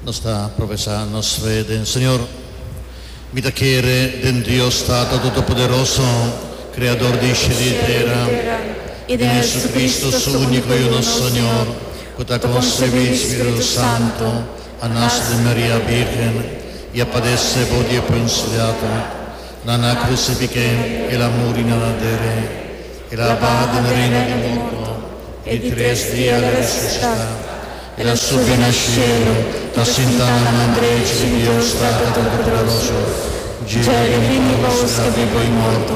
Nos ta profesá nos fe den Señor. Mi ta kere den Dios Tata Totopoderoso, Kreador di sheli i tera, i den Hesucristo, Su úniko Yunus Señor, ku ta konsebi di Spiritu Santu, a nace di Maria Birgen y a padece bo die punsliata, nan a crucifi ke y el a muri na ladere. El a baha den reino di morto y di tres dia el a resucita. El a subi na cielo, ta sinta na man drechi di Dios Tata Todopoderoso. Dje el a bini bos ke a vivo y morto.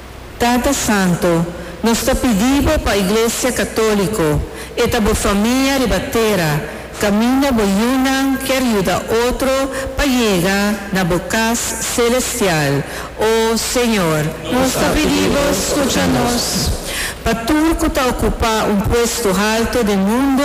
Tata Santo, nos ta pidi Bo pa Iglesia Católico, e ta Bo famia riba tera, caminda Bo yunan kier yuda otro pa yega na Bo cas celestial, o Señor. Nos ta pidi Bo scucha nos. Pa tur cu ta ocupa un puesto halto den mundo,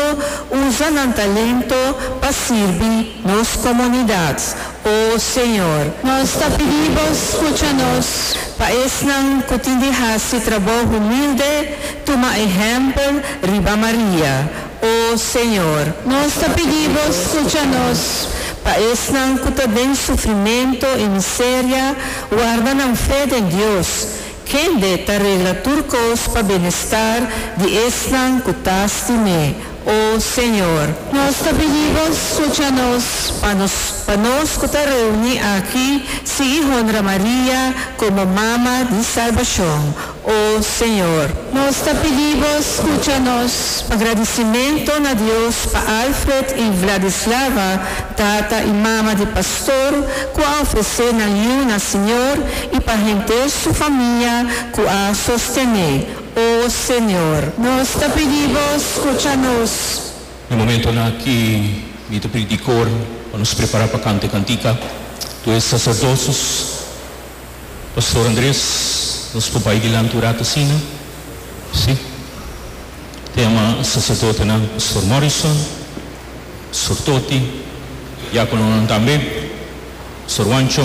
usa nan talento pa sirbi. Nos comunidad, oh Señor. Nos ta pidi Bo scucha nos. Pa esnan cu tin di haci traboho humilde, tuma ehempel riba Maria, oh Señor. Nos ta pidi Bo scucha nos. Pa esnan cu ta den sufrimento y miseria, warda nan fe den Dios, kende ta regla tur cos pa benestar di esnan cu ta stim'é, O Señor, nos ta pidiba, scucha nos, pa nos, pa nos cu ta reuni aki, sigui honra Maria como Mama di Salbacion. O Señor. Nos ta pidiba, scucha nos, pa gradicimento na Dios pa Alfred y Vladislava, tata y mama di Pastor cu a ofrece nan yu na Señor y pa henter su famia cu a sostene. O Señor, nos ta pidi Bo, scucha nos. E momentonan aki mi ta pidi di cor pa nos prepara pa canta e cantica. Tur e sacerdosos, Pastor Andres, nos por bay dilanti un rato asina? Si. Ta yama e sacerdotenan Pastor Morrison, Pastor Toti, diacononan tambe, Pastor Juancho.